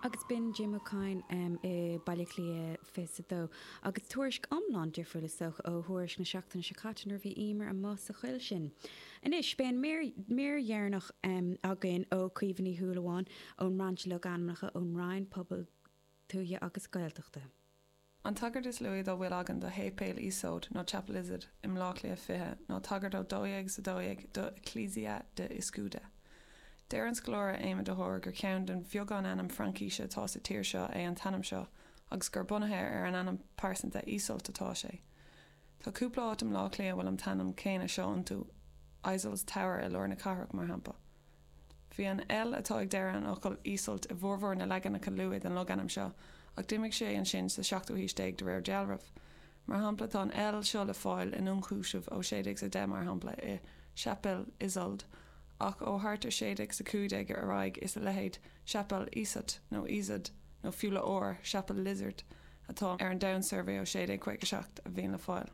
agus b'in Jim Ó Cadhain i mBaile Átha Cliath 22, agus tuairisc iomlán difriúil is dócha ó thuairisc na seachtaine seo caite nuair a bhí Emer amuigh sa choill sin. Anois beidh an mír dheireanach againn ó Chaoimhe Ní Shúilleabháin ón mBrainse Logainmneacha ón Roinn Pobail Tuaithe agus Gaeltachta. An tagairt is luaithe dá bhfuil againn do Shéipéal Iosóid nó Chapelizod i mBleá Cliath 20 ná tagairt ó 1212 do Ecclesia de Iscude. Deir an scoláire Éamonn de hÓir gur ceann den bheagán ainm Fraincise atá sa tír seo é an t-ainm seo agus gur bunaithe ar an ainm pearsanta Iseult atá sé. Tá cúpla áit i mBleá Cliath a bhfuil an t-ainm céanna seo iontu, Isolde's Tower i lár na cathrach, mar shampla. Bhí an L atá ag deireadh an fhocail Iseult i bhformhór na leaganacha luaith den logainm seo, ach d'imigh sé ansin sa seachtú haois déag de réir dealraimh. Mar shampla, tá an L seo le fáil in ionchúiseamh ó 1610, mar shampla, i Chapel Isold, ach ó thart ar 1615 ar aghaidh is a leithéid, chapel Ysut nó Ysod, nó fiú le R, chapel Lizard. atá ar an Down Survey ó 1657 a bhíonn le fáil.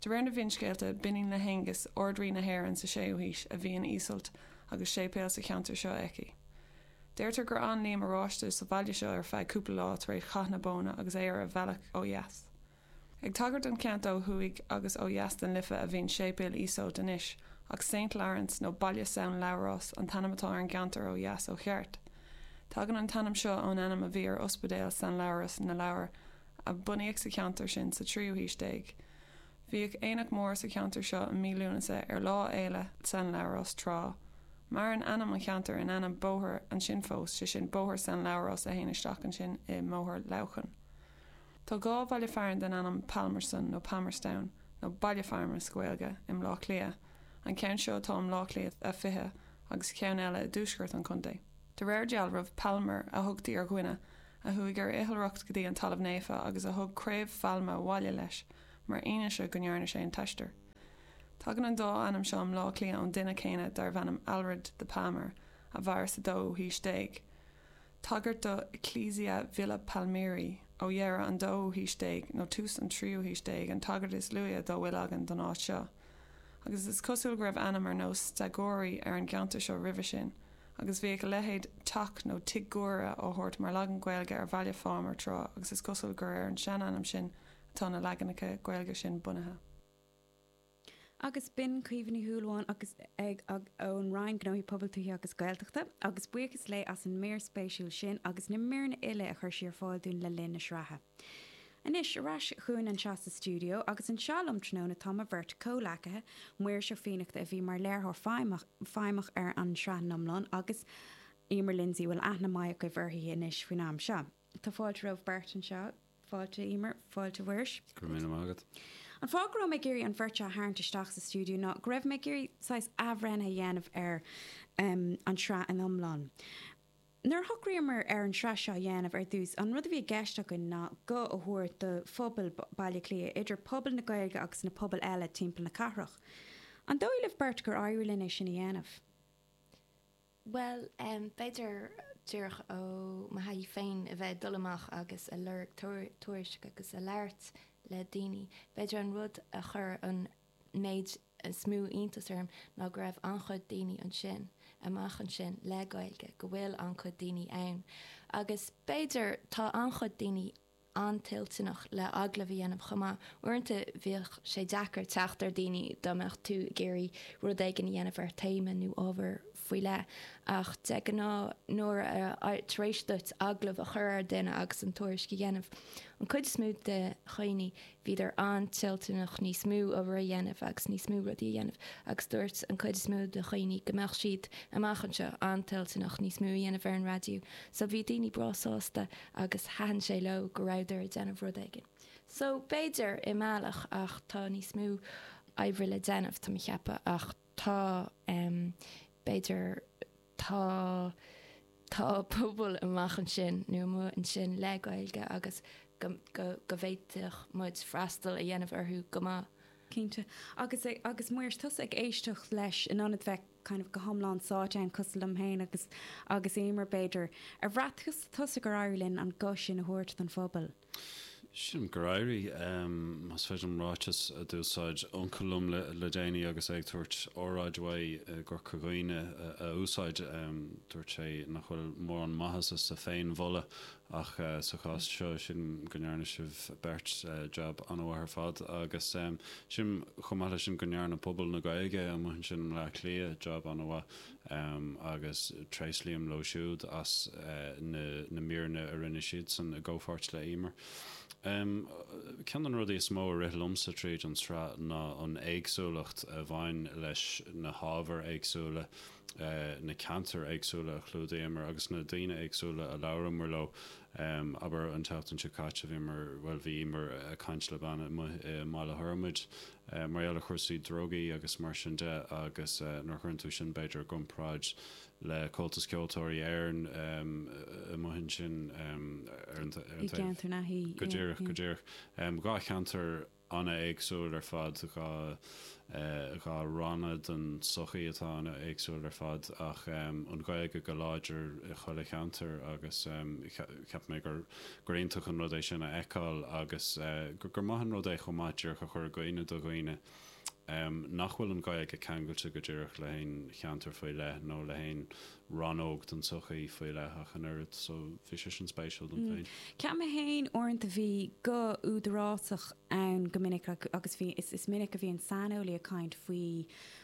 De réir na bhfinscéalta, b'iníon le hAengus, Ard-Rí na hÉireann sa 6ú haois, a bhí in Iseult agus séipéal sa cheantar seo aici. Deirtear gur fhan Liam Oráiste sa bhaile seo ar feadh cúpla lá tar éis Chath na Bóinne agus é ar a bhealach ó dheas. Ag tagairt don cheantar ó thuaidh agus ó dheas den Life a bhíonn Séipéal Iosóid anois, ach Saint Laurence nó Baile San Labhrás an t-ainm atá ar an gceantar ó dheas ó cheart. Tagann an t-ainm seo ón ainm a bhí ar ospidéal San Labhrás na Lobhar a bunaíodh sa cheantar sin sa tríú haois déag. Bhíodh aonach mór sa cheantar seo i mí Lúnasa ar Lá Fhéile San Labhrás tráth. Maireann ainm an cheantair in ainm bóthair ansin fós, sé sin Bóthar San Labhrás a théann isteach ansin i mBóthar Leamhcáin. Tá dhá bhaile fearainn den ainm Palmerston nó Palmerstown nó Baile Phámar sa Ghaeilge i mBleá Cliath, an ceann seo atá i mBleá Cliath a 20 agus ceann eile i dtuaisceart an chontae. De réir dealraimh, Palmer a thugtaí ar dhuine a chuaigh ar oilithreacht go dtí an Talamh Naofa agus a thug craobh phailme abhaile leis mar fhianaise go ndearna sé an t-aistear. Tagann an dá ainm seo i mBleá Cliath ón duine céanna darbh ainm Aelred the Palmer a mhair sa dóú haois déag. tagairt do ecclesia Ville Palmeri ó dheireadh an dóú haois déag nó tús an tríú haois déag an tagairt is luaithe dá bhfuil againn don áit seo, agus is cosúil go raibh ainm ar nós Stagori ar an gceantar seo roimhe sin, agus bhíodh a leithéid 'teach' nó 'Tigh Guaire' á thabhairt mar leagan Gaeilge ar Bhaile Phámar tráth agus is cosúil gur ar an seanainm sin atá na leaganacha Gaeilge sin bunaithe. agus b'in Caoimhe Ní Shúilleabháin agus í ag caint ón Roinn Gnóthaí Pobail, Tuaithe agus Gaeltachta, agus buíochas léi as an mír spéisiúil sin agus na míreanna uile a chuir sí ar fáil dúinn le linn na sraithe. Anois, ar ais chugainn anseo sa stiúideo, agus anseo liom tráthnóna tá mo bheirt chomhghleacaithe, Muiris Ó Fiannachta a bhí mar léiritheoir feidhmeach ar an tsraith in iomlán agus Eimear Lindsay a bhfuil aithne mhaith agaibh uirthi anois faoin am seo. Tá fáilte romhaibh beirt anseo. Fáilte, Eimear. Fáilte, Mhuiris. Go raibh míle maith agat. An fáth go raibh mé ag iarraidh an bheirt seo a tharraingt isteach sa stiúideo ná go raibh mé ag iarraidh saghas athbhreithnithe a dhéanamh ar an tsraith in iomlán. Nuair a shocraíomar ar an tsraith seo a dhéanamh ar dtús, an rud a bhí i gceist againn ná guth a thabhairt do phobal Bhaile Átha Cliath, idir pobal na Gaeilge agus na pobail eile timpeall na cathrach. An dóigh libh beirt gur éirigh linn é sin a dhéanamh? Bhuel, b'fhéidir, díreach ó mo thaithí féin a bheith ag dul amach agus a lorg tuairisc agus a labhairt le daoine, b'fhéidir an rud a chuir an méid is mó iontas orm ná go raibh an-chuid daoine ansin, amach ansin, le Gaeilge, go bhfuil an-chuid daoine ann. Agus b'fhéidir, tá an-chuid daoine an-toilteanach le agallamh a dhéanamh chomh maith. Uaireanta bhíodh sé deacair teacht ar daoine dá mbeadh tú ag iarraidh rud éigin a dhéanamh ar théama nó ábhar faoi leith. Ach de ghnáth nuair a, tar éis duit agallamh a chur ar dhuine agus an tuairisc a dhéanamh, an chuid is mó de dhaoine, bhíodar an-toilteanach níos mó oibre a dhéanamh agus níos mó rudaí a dhéanamh agus dúirt an cuid is mó de dhaoine go mbeadh siad, amach anseo, an-toilteanach níos mó a dhéanamh ar an raidió. So bhí daoine breá sásta agus thaitin sé leo go rabhadar ag déanamh rud éigin. So b'fhéidir, i mbealach, ach tá níos mó oibre le déanamh, tá mé a cheapadh, ach tá, em, b'fhéidir, Tá tá pobal amach ansin, nó amuigh ansin, le Gaeilge agus go go go bhféadfadh muid freastal a dhéanamh orthu go maith. Cinnte. Agus agus Muiris, tusa ag éisteacht leis in ionad bheith kind of go hiomlán sáite ann cosúil liom féin agus agus Eimear b'fhéidir. Ar bhraith tusa gur éirigh linn an guth sin a thabhairt don phobal? Sílim gur éirigh, más féidir an ráiteas a d'úsáid uncail liom le déanaí agus é ag tabhairt óráid uaidh i gCorca Dhuibhne a úsáid. Dúirt sé nach bhfuil mórán maitheasa sa féin-mholadh ach sa chás seo, sílim go ndearna sibh beirt jab an-mhaith ar fad agus sílim, chomh maith leis sin, go ndearna pobal na Gaeilge amuigh ansin i mBleá Cliath jab an-mhaith. Um, agus tréaslaím leo siúd as na, na míreanna a rinne siadsan i gcomhpháirt le Eimear. Um, ceann de na rudaí is mó a rith liomsa tríd an tsraith ná an éagsúlacht a bhain leis na hábhair éagsúla, eh, na ceantair éagsúla a chlúdaíomar agus na daoine éagsúla a labhramar leo. Um, abair an tseachtain seo caite bhíomar, bhuel bhí Eimear a' caint le bean amuigh i mBaile Thormaid, eh, mar gheall ar chúrsaí drugaí agus mar sin de agus eh, nuair a chuireann tú sin b'fhéidir i gcomparáid le Comhaltas Ceoltóirí Éireann em, eh, amuigh ansin em, ar an, ta- ar an taobh i gceantar na hí. Go díreach, go díreach. Um, dhá cheantar ana-éagsúil ar fad, dhá, eh, dhá ranna den sochaí atá ana-éagsúil ar fad, ach em, an Ghaeilge go láidir i chuile cheantar agus em, che- cheap mé gur, gur iontach an rud é sin a fheiceáil agus gur maith an rud é chomh maith díreach a chur i gcuimhne do dhaoine nach bhfuil an Ghaeilge ceangailte go díreach le haon cheantar faoi leith nó le haon rannóg den tsochaí faoi leith ach an oiread so bhí sé sin spéisiúil dom féin. Cheap mé féin uaireanta a bhí guth údarásach ann go minic agus bhí, is minic a bhíonn saineolaí ag caint faoi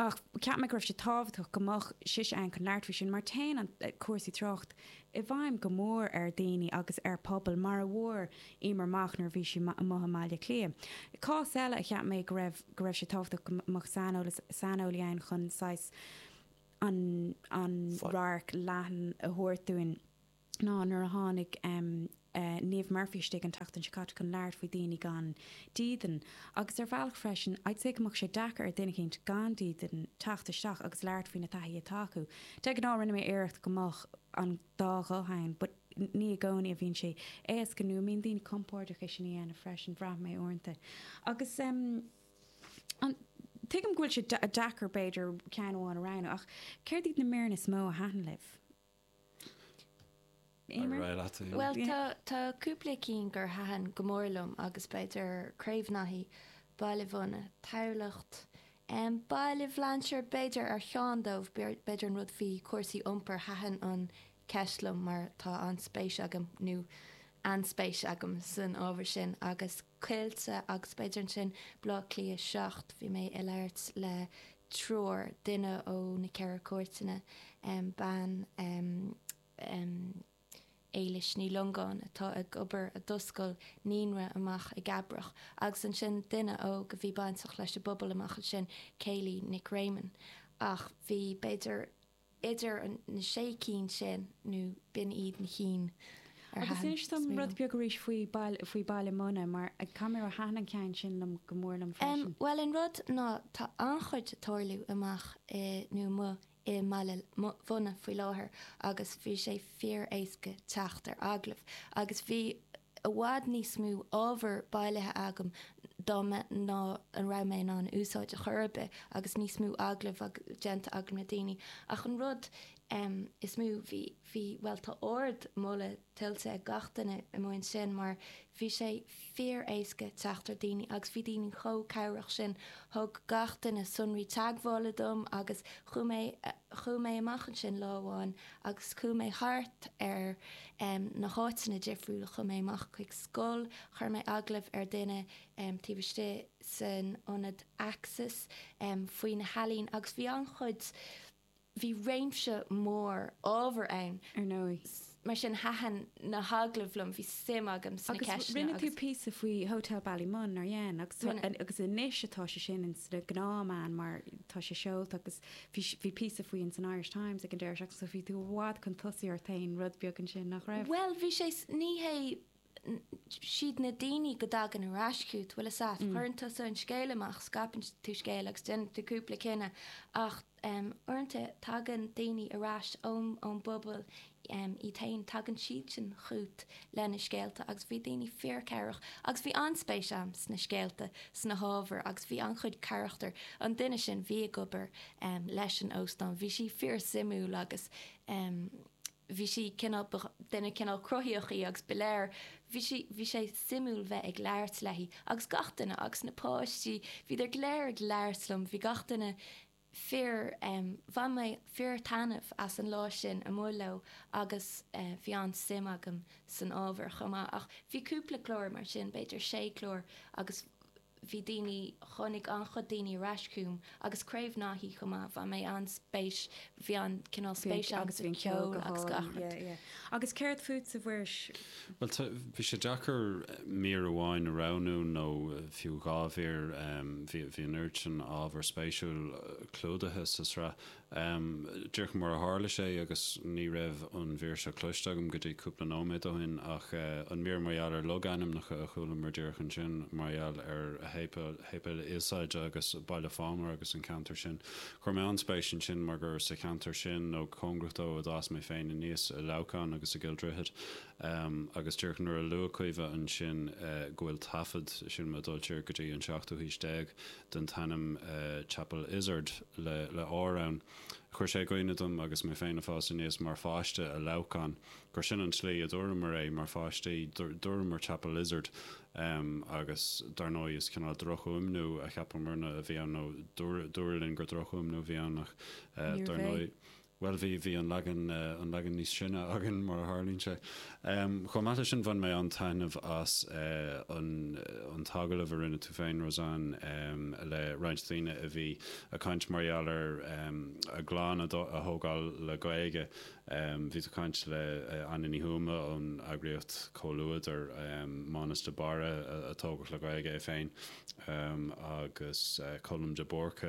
ach cheap mé go raibh sé tábhachtach go mbeadh sise ann chun labhairt faoi sin mar téann cúrsaí tráchta i bhfeidhm go mór ar dhaoine agus ar phobal mar a fuair Emer amach nuair a bhí sí amuigh i mBaile Átha Cliath. Cás eile a cheap mé go raibh go raibh sé tábhachtach go mbeadh saineolas saineolaí ann chun saghas an an radharc leathan a thabhairt dúinn. ná nuair a tháinig Niamh Murphy isteach an tseachtain seo caite chun labhairt faoi daoine gan dídean. Agus ar bhealach freisin, I'd say go mbeadh sé deacair ar dhuine eicínt gan dídean teacht isteach agus labhairt faoi na taithí atá acu. De ghnáth, rinne mé iarracht go mbeadh an dá ghuth ann, but ní i gcónaí a bhíonn sé éasca nó a mbíonn daoine compordach é sin a dhéanamh freisin, bhraith mé uaireanta. Agus em. tuigim go bhfuil sé deacair, b'fhéidir, ceann amháin a roghnú, ach céard iad na míreanna is mó a thaitin libh? Éimear? Ar aghaidh leat, a Dheon. Bhuel, tá, tá cúpla cinn a thaitin go mór liom agus b'fhéidir Craobh Naithí, Baile Mhunna, Tamhlacht, em, Baile Bhlainséir b'fhéidir ar cheann díobh, b'fhéidir an rud faoi chúrsaí iompair, thaitin an cheist liom mar tá an-spéis agam nó an-spéis agam san ábhar sin agus. Coillte agus b'fhéidir ansin Baile Átha Cliath 7 bhí mé ag labhairt le triúr, duine ó na Ceithre Cúirteanna, bean, Éilis Ní Longáin, atá ag obair, a d'oscail naíonra amach i gCabraigh, agus ansin duine óg a bhí bainteach leis an bpobal amach ansin, Kayleigh Nic Réamoinn. Ach bhí, b'fhéidir, idir na sé cinn sin nó b'in iad na cinn a thaitin liom. Agus inis dom rud beag arís faoi faoi Baile Munna, mar cad mar a thaitin an ceann sin liom go mór liom freisin. Bhuel, an rud ná, tá an-chuid ag tarlú amach i, nó amuigh i mBaile Mhunna faoi láthair agus bhí sé fíor-éasca teacht ar agallamh agus bhí, i bhfad níos mó ábhar bailithe agam dar ndóigh nach raibh mé in ann a úsáid ar chor ar bith agus níos mó agallamh déanta agam le daoine ach an rud is mó, bhí, bhí, bhuel tá ard mholadh tuillte ag gach duine amuigh ansin mar bhí sé fíor éasca teacht ar daoine agus bhí daoine chomh cabhrach sin, thug gach duine sonraí teagmhála dom agus chuaigh mé, chuaigh mé amach ansin lá amháin agus chuaigh mé thart ar na háiteanna difriúla, chuaigh mé amach chuig scoil, chuir mé agallamh ar dhuine taobh istigh san ionad Axis faoi na healaíona agus bhí an-chuid, bhí réimse mór ábhar ann, ar ndóigh, mar sin thaitin na hagallaimh liom, bhí suim agam sna ceisteanna agus. Agus rinne tú píosa faoi Hotel Ballymun, nár dhein? Agus anois atá sé sin ins na gnáth meáin mar tá sé seolta agus. bhí, bhí píosa faoi ins an Irish Times ag an deireadh seachtaine so bhí tú i bhfad chun tosaigh ar an rud rud beag ansin, nach raibh? Bhuel, bhí sé, ní hé, is iad na daoine go dtagann ar ais chút, bhfuil 'fhios a'd, cuireann tusa an scéal amach, scríobhann tú scéal agus déanann tú cúpla cinneadh ach, em, uaireanta tagann daoine ar ais ón, ón bpobal é féin. Tagann siadsan chút leis na scéalta agus bhí daoine fíor cabhrach agus bhí an-spéis agam sna scéalta, sna hábhair agus bhí an-chuid carachtar, an duine sin bhí ag obair leis an óstán, bhí sí fíor suimiúil agus bhí sí cineál, ba duine cineál cruthaitheach í agus ba léir, bhí sí, bhí sé suimiúil bheith ag labhairt léi agus gach duine agus na páistí, bhíodar go léir ag labhairt liom, bhí gach duine fíor, Bhain mé fíor-thaitneamh as an lá sin amuigh leo agus bhí an-suim agam san ábhar chomh maith. Ach bhí cúpla clár mar sin, b'fhéidir sé chlár agus bhí daoine, tháinig an-chuid daoine ar ais chugam agus Craobh Naithí chomh maith, bhain mé an-spéis, bhí an-chineál spéis agam sa cheol agus gach rud. Agus céard fút a Mhuiris? Bhuel, tá, bhí sé deacair mír amháin a roghnú, nó fiú dhá mhír, bhí, bhí an oiread sin ábhar spéisiúil clúdaithe sa tsraith, díreach mar a tharla sé, agus ní raibh an mhír seo cloiste agam go dtí cúpla nóiméad ó shin, ach an mír mar gheall ar logainmneacha a chualamar díreach ansin, mar gheall ar Shéipéal Iosóid agus Baile Phámar agus an ceantar sin Chuir mé an-spéis ansin mar gur sa cheantar sin, nó go cóngarach dó, a d'fhás mé féin aníos, i Leamhcán agus i gCill Droichid, agus díreach nuair a luaigh Caoimhe ansin go bhfuil taifead, sílim ag dul siar go dtí an seachtú haois déag, den t-ainm Chapel Izard le R ann, chuir sé i gcuimhne dom agus mé féin ag fás aníos mar pháiste i Leamhcán, gur sin an tslí a dúramar é mar pháistí, dúramar Chapel Izard. Um, agus dar ndóigh, is cineál drochfhuaimniú a cheapamar-na a bhí ann, nó dúradh, dúradh linn gur drochfhuaimniú a bhí ann, ach eh, dar ndóigh, bhuel, bhí, bhí an leagan, eh, an leagan níos sine againn, mar a tharlaíonn sé. Um, chomh maith leis sin, bhain mé an-taitneamh as eh, an, an t-agallamh a rinne tú féin, Roseann, em, le roinnt daoine a bhí a' caint mar gheall ar, em, a gclann a dto, a thógáil le Gaeilge, Bhí tú a' caint le Áine Ní Thuama ón eagraíocht Comhluadar, Mánus de Barra a tógadh le Gaeilge é féin agus Colm de Búrca,